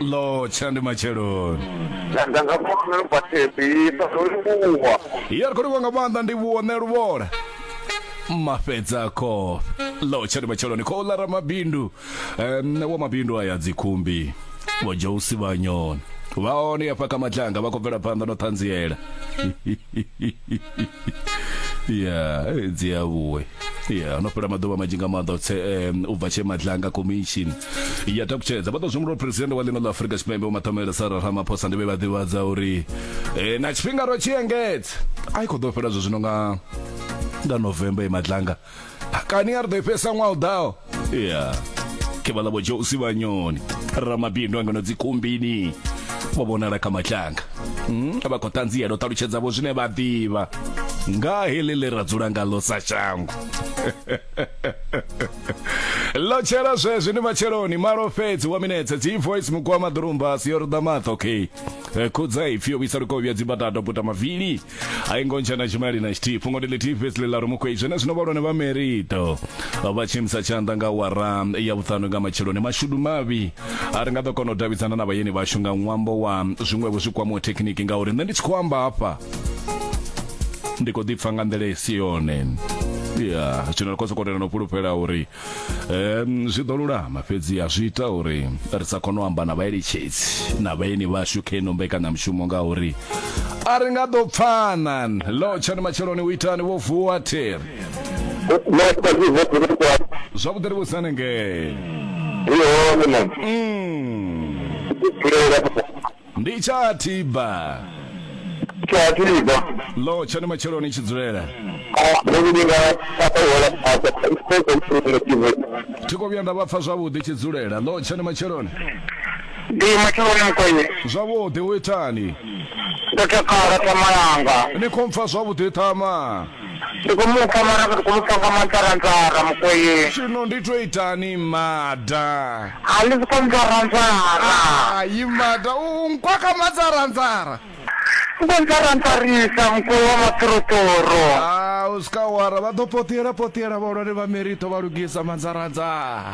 lo tshila ndi matsheloni Tshanda nga mwana lu bathebi sa ḓo livhuwa. ya ri khou livhuwa nga maanḓa ndi vhuone luvhola mafhedza khofhe lo tshani matsheloni khou ḽa ramabindu um, wa mabindu aya dzikhumbi vho jousi vhanyoni vha hone yafha kha matlanga vha khou bvela phanḓa no ṱhanziela ya dzi a vhuwe ya no fhela maḓuvha manzhi nga maanḓa utse um, u bva tshe madlanga commission ya takutshedza vha ḓo zwengula president wa ḽino ḽa afurika tshipembe vho matomela sara ramaphosa ndi vhe vha ḓivhadza uri eh, na tshifhinga ro tshi engedza a i khou ḓo fhela zwo zwino nga nga november ye madlanga kani a ri ḓo i fhesa ṅwaha u ḓaho ya ke vha ḽa vho josi vhanyoni ramabindu angano dzikumbini vho vhonala kha matlanga hmm, vha khou ṱanziela u ṱalutshedza vho zwine vha ḓivha nga heḽi ḽe ra dzula ngaḽo sa shango ḽo tshela zwezwi ndi matsheloni malo fhedzi wa minetse dzi voice mugwama ḓurumba si yo ruḓa maṱo okay khudza ipfi yo vhuisa lukovhya dzibatato puta mavili hai ngontsha na tshimali na tshithihi fhungo ndi ḽithihi fhedzi ḽi ḽa rumukwei zwenezwino vhalwane vha merito vha tshimisa tshanḓa nga wara ya vhuṱanu nga matsheloni mashudu mavhi a ri nga ḓo kona u davhidzana na vhayeni vhashu nga ṅwambo wa zwiṅwevho zwi kwamaho thekhiniki ngauri nṋe ndi tshi khou amba hafha ndi khou ḓipfa nga nḓila i si yone ya zwino ri khou sokou tenda no fhulufhela uri um zwi ḓo lulama fhedzi a zwi ita uri ri sa kone u amba na vhaeletshedzi na vhaeni vhashu kha ino mbekanyamushumo nga uri a ri nga ḓo pfana lo tshani matsheloni u itani vho vuwa theri zwavhuḓi ri vhusane ngee mm. ndi tsha thiba Tsha tiba. lo tshani matsheloni tshi dzulela Mimi ni na papa wala papa. Ipo kwa mfumo kiwe. thi khou vhuya nda vha pfa zwavhuḓi tshi dzulela lo tshani matsheloni Ndi matsheloni mukwenye. zwavhuḓi u itani Ndo takala tamalanga. ni khou mpfa zwavhuḓi ṱhama Ri khou mu pfa mara ri khou mu pfa nga manzaranzara mukweyi. Zwino ndi to itani mmada. A ḽi soko nzaranzara. Hai mmada u nkwakha manzaranzara. U khou nzaranzarisa mukweyi wa maṱoroṱoro. Haa u swika awara vha ḓo poṱiela poṱiela vhahulwane vha Merito vha lugisa manzaranzara.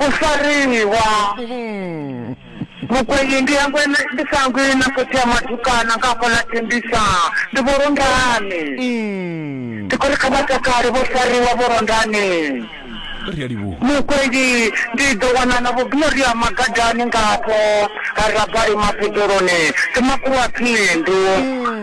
U fariwa. Mukwenyi, ndi hangwe ndi sa hangwi na khotsi ya matukana nga hafha ḽa Tembisa, ndi Vho Londani. Ndi khou ri kha vha takale, vho fariwa Vho Londani. Ri a livhuwa. Mukwenyi, ndi ḓo wana na Vho Gloria Magadani nga hafho ha Rabali mapedzeloni, ndi makhulu a phindu.